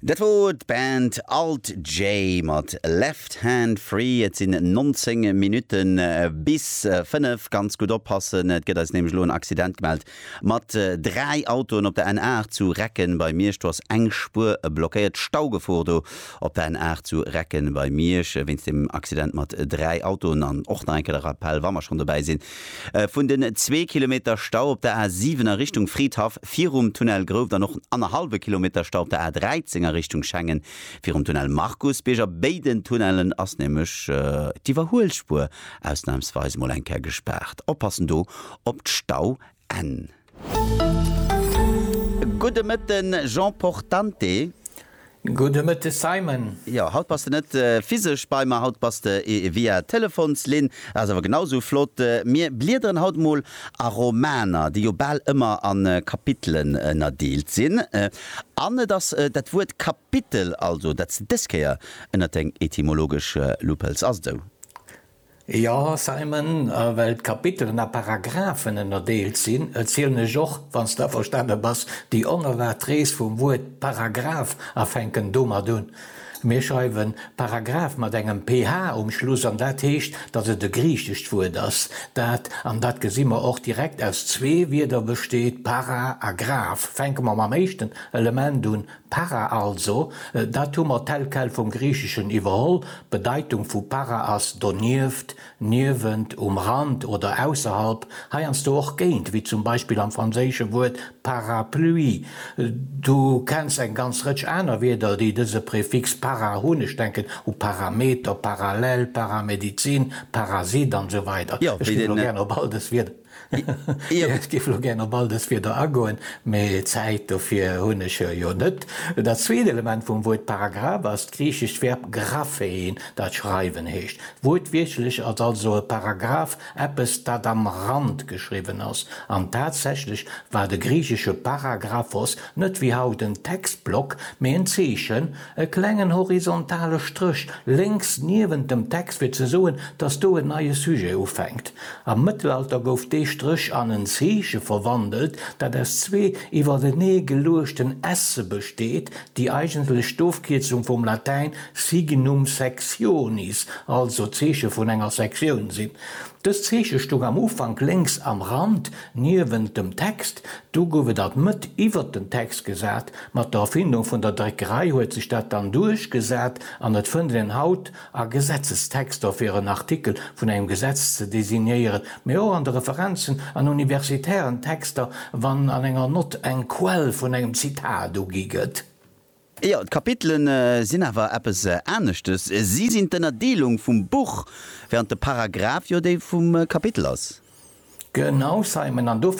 Dat wor d'Band Alt J mat Left Hand Free. Et sinn 19 Minutten bis 5. Ganz gutt oppassen, et gëtt eis nämlech elo en Accident gemellt mat 3 Autoen op der N8 zu Recken bei Miersch. Do ass eng Spuer blockéiert. Staugefor do op der N8 zu Recken bei Miersch wéinst dem Accident mat 3 Autoen. An och nach eng Kéier de Rappell, wa mer schonn dobäi sinn, Vun den zwee Kilometer Stau op der A 7 a Richtung Fridhaff virum Tunnel Grouft an och den annerhallwe Kilometer Stau op der A 13 a Richtung Schengen virum Tunnel Markusbierg. A béiden Tunnellen ass nämlech d'Iwwerhuelspuer ausnamsweis mol eng Kéier gespaart. Oppassen do op d'Stau Gudde Mëtte Jean Portante. Gudde Mëtte Simon. Jo, haut bass de net physesch bei mer, haut bass de via Telefonslinn. Ass awer genau esou flott. Mir bliederen haut emol a Romaner, déi jo bal ëmmer a Kapitelen ënnerdeelt sinn. An et ass dat Wuert Kapitel also, dat s de dës Kéier ënnert deng etymologesch Lupp hëls. Ass et esou? Jo, Simon, a well d'Kapitelen a Paragraphen ënnerdeelt sinn, erzielen ech och, wann s d'averstane bass, déi onerwaart Rees vum Wuert Paragraph a fänken domat un. Mir schreiwe Paragraph mat engem PH um Schluss an dat heescht, datt et e griichescht Wuert ass, dat, an dat gesi mer och direkt, aus zwee Wierder besteet, para a graph. Fänke mer mam éischten Element un, Para also, dat hu mer tel quel vum Griicheschen iwwerholl, d'Bedeitung vu para ass donieft, niewent, um Rand oder ausserhalb, heiansdo och géint, wéi zum Beispill am franséische Wuert parapluie. Du kenns eng ganz Rëtsch aner Wierder, déi dëse Prefix para hunn, ech denken u Parameter, Parallel, Paramedizin, Parasit an esou weider. Ech ginn elo gär op all dës Wierder. Ech géif elo gären op all dës Wierder agoen, mä Zäit dofir hunn ech jo net. Dat zweet Element vum Wuert Paragraph ass d'griichescht Verb graphein, dat schreiwen heescht. Wuertwiertlech ass also e Paragraph eppes, dat am Rand geschriwwen ass. An tatsächlech war de griichesche para graph os net wéi haut en Textblock, mä en Zeechen, E klengen horizontale Stréch lénks niewent dem Text fir ze soen, dass do en neie Sujet ufänkt. Am Mëttelalter gouf dee Stréch an en Zeeche verwandelt, dat aus zwee iwwertenee geluechten esse besteet, déi eigentlech d'Ofkierzung vum Latäin signum sectionis, also Zeeche vun enger Sektioun, sinn. Dëst Zeeche stoung am Ufank lénks am Rand niewent dem Text, Do gouf et alt Mëtt iwwert den Text gesat. Mat der Erfindung vun der Dréckerei huet sech dat dann duerchgesat an et fënnt een haut a Gesetzestexter fir en Artikel vun engem Gesetz ze designéieren, mee och an de Referenzen an universitären Texter, wann an enger Nott eng Quell vun engem Zitat ugi gëtt. Jo, d'Kapitele sinn awer eppes aneschtes. Si sinn d'Ënnerdeelung vum Buch, während de Paragraph jo déi vum Kapitel ass. Genau, Simon, an do.